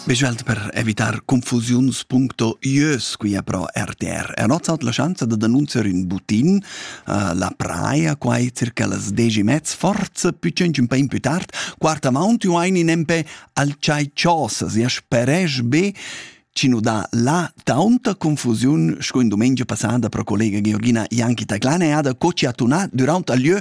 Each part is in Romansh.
Specialt per evitar confusiuns puncto ieus quia pro RTR è nozzat la schanza da denunziar ün butin uh, la praia quai circa las 10 mezz forza più cenci un po' più tard quart amount io ein in empe al chai chosas ja speresch be ci nu dà la taunta confusiun sco in domenica passata pro collega Georgina Janchi Taclane e ada co ci ha tunà durant a lieu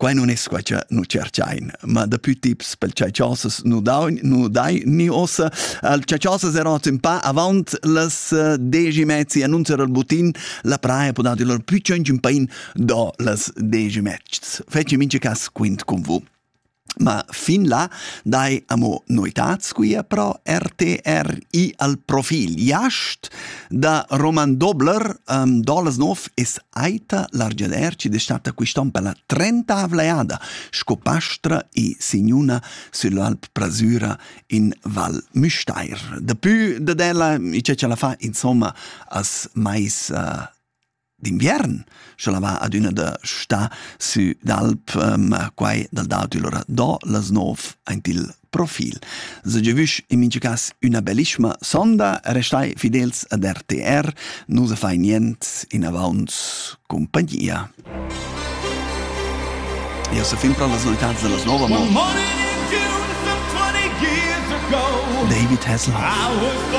Quai non es quai cha nu tscherchain, ma dapü tips pel chatschassas nu daun, nu dai ni ossa. Il chatschassas era hoz ün pa avant las eh, desch e mezza annunzia dal butin, la praja po dar dir lur plü tschöntsch ün pain do las desch e mezz. Feci mincha cas quint cun vous. Ma fin là dai amo noetats quia pro RTRI al profil Jast Da Roman Dobler um, Dolasnov es aita l'argeler chi destatta quist'on per la trentavla eada sco pastra e signuna süll'Alp Prasüra in Val Müstair. Dapü dad ella, i c'è ce la fa insomma as mais uh, d'inviern, sche la va adüna da stà sü d'alp, ehm, quai dal dautü lura do las nov aint il profil. Se giavüsch in mincha cas üna bellischma sonda, restai fidels ad RTR, nu se fai niente, in avaunt compagnia. Io se fin pro las novitats de las nova mo David Hasselhoff.